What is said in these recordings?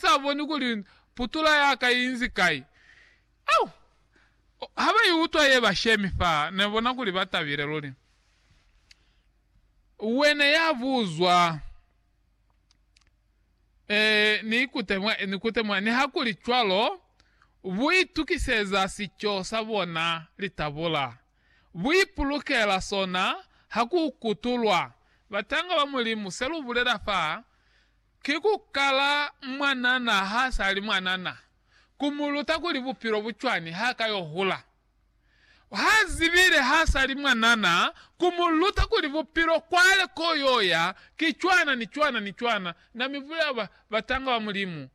sa boni kuli putula yaka inzi kai. Au! Ha ba i utwa ye ba shemi fa, ne bona kuli ba tabile luli. Wena ya buzwa, Ee, ni ikute mwa, ni kute mwa. Nihakuli cwalo, bu itukiseza sico sa bona, litabula. Bu ipulukela sona ha ku kutulwa. Batanga ba Mulimu, se lu bulela fa, Ki ku kala mwanana ha sa li mwanana, ku mu luta kuli bupilo bu cwani ha ka yo hula. Ha zibile ha sa li mwanana, ku mu luta kuli bupilo kwale ko yo ya ki cwana ni cwana ni cwana. Na mi bulela, Ba, batanga ba Mulimu.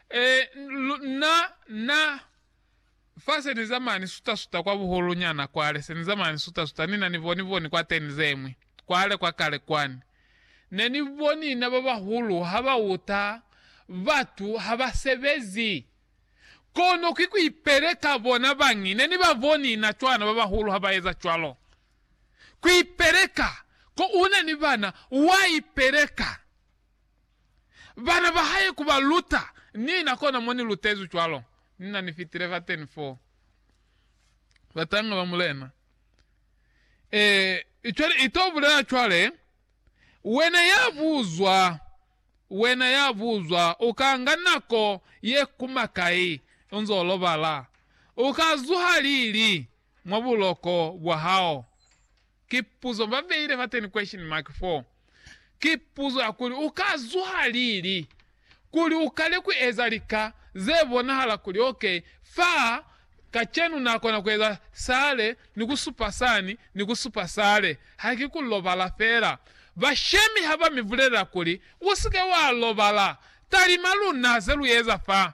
E, lu, na, na. Fa se ni zama ni suta-suta kwa buhulu nyana kwale, se ni zama ni suta-suta, ni na ni boni-boni kwa teni zeñwi, kwale kwa kale kwani. Ne ni boni na ba bahulu ha ba uta, batu ha ba sebezi. Kono ki ku ipeleka bona bañi, ne ni ba boni na cwana ba bahulu ha ba eza cwalo. Ku ipeleka, ko una ni bana, wa ipeleka. bana ba hae ku ba luta. Ni na kona mo ni lutezwi cwalo. Ni na ni fitile fateni foo. Batanga ba Mulena. Ee, cwale i to bulela cwale, Wena ya buzwa, wena ya buzwa, u ka nga nako ye kuma kai u nzo lobala? U ka zuha lili? mwa buloko bwa hao? Ki puzo ba beile fa ten question mark fo. Ki puzo ya kuli u ka zuha lili kuli u kale ku eza lika ze bonahala kuli ok fa kacenu na kona ku eza sale ni ku supa sani ni ku supa sale. Ha ki ku lobala fela. Bashemi ha ba mi bulelela kuli, U si ke wa lobala, talima luna ze lu eza fa.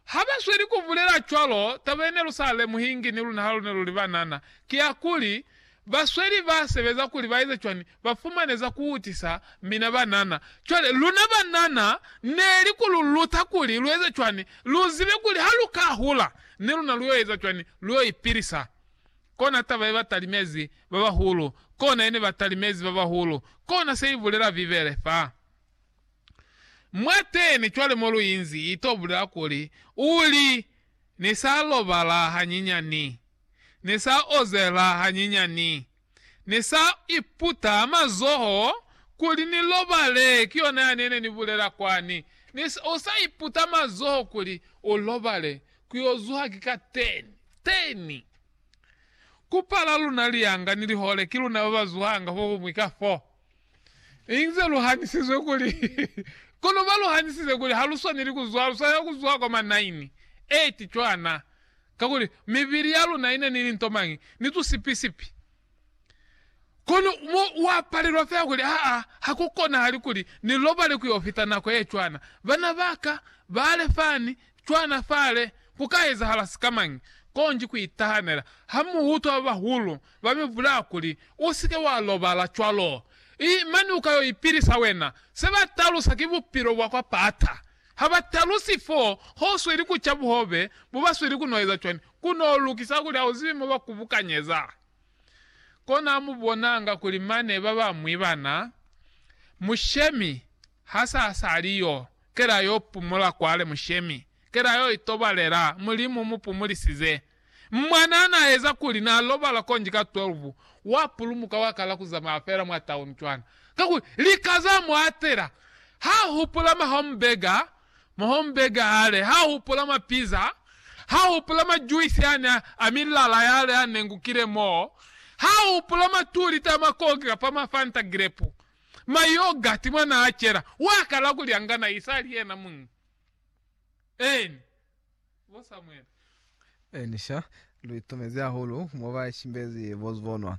Ha ba sweli ku bulela cwalo, taba ye ne lu sa lemuhingi ni luna ha lu ne lu li banana, ki ya kuli, Basweli ba sebeza kuli ba eze cwani? Ba fumane za ku utisa mina banana. Cwale, luna banana ne li ku lu luta kuli lu eze cwani, lu zibe kuli ha lu ka hula, ni luna lu yo eza cwani? Lu yo ipilisa. Kona taba ye ba talimezi ba bahulu. Kona ye ne ba talimezi ba bahulu. Kona se i bulela Bibele fa. Mwateni cwale mo lu inzi, i to bulela kuli, u li, Ni sa lobala hanyinyani. Ni sa ozela hanyinyani. Ni sa iputa mazoho kuli ni lobale. Ki yona yani yene ni bulela kwani. Ni, u sa iputa mazoho kuli u lobale, ku yo zuha ki ka teni. Teni. Ku pala luna lianga ni lihole, ki luna ba ba zuhanga fohumwi ka fo. Inze luhanisizwe kuli, kono baluhanisize kuli haluswaneli kuzwa, luswanela kuzwa kwa manaini, eti cwana, kakuli mibili yaluna ina ni linto mañi, ni tusipi-sipi. Kono mo wapalelwa fela kuli, Aa, hakukonahali kuli ni lobale kuyo fita nako yecwana. Bana baka, bale fani, cwana fale, kuka ezahala sikamañi? Konji kuitahanela. Hamuutwa babahulu Ba mi bulaya kuli, U si ke wa lobala cwalo. I mani u ka yo ipilisa wena. Se ba talusa ki bupilo bwa kwa pata. Ha ba talusi fo ho sweli ku ca buhobe bo ba sweli ku no eza cwani, ku no lukisa kuli ha u zibi mo ba kubukanyeza. Kona mu bonanga kuli mane ba bañwi bana, Mushemi ha sa sali yo, kela yo pumula kwale, Mushemi, kela yo itobalela, Mulimu mu pumulisize. Mwanaa naeza kuli nalobala konji ka 12, wapulumuka wakala kuzamaya feela mwa tauni cwana. Kakuli lika zamuatela. Hahupula ma homburger, ma homburger yale, hahupula ma pizza, hahupula ma juice yani a milala yale anengukile moo, hahupula ma two liter a ma coke kapa ma fanta grape, ma yoghurt mwanaacela. Wakala kulyangana isali yena muñi. Eeni. bo Samuele. Elisha, Lu itumezi hahulu mo ba ishimbezi bo zubonwa.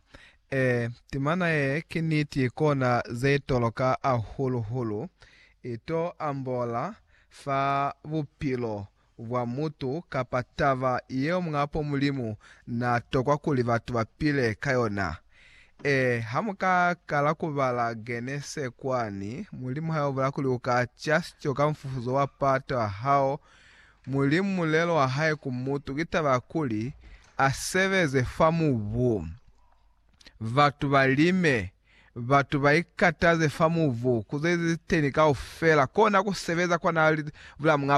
Ee, timana ye ki niti kona ze toloka hahulu-hulu. I to ambola fa bupilo bwa mutu kapa taba yeo Muñapo Mulimu na tokwa kuli batu ba pile ka yona. Ee, ha mu ka kala ku bala Genese kwani, Mulimu ha yo bula kuli u ka ca sico ka mufufuzo wa pato ya hao. Mulimu mulelo wa hae ku mutu ki taba ya kuli a sebeze fa mubu, batu ba lime, batu ba ikataze fa mubu, ku ze li teni kaufela. Kona ku sebeza kwa na bula muñ'a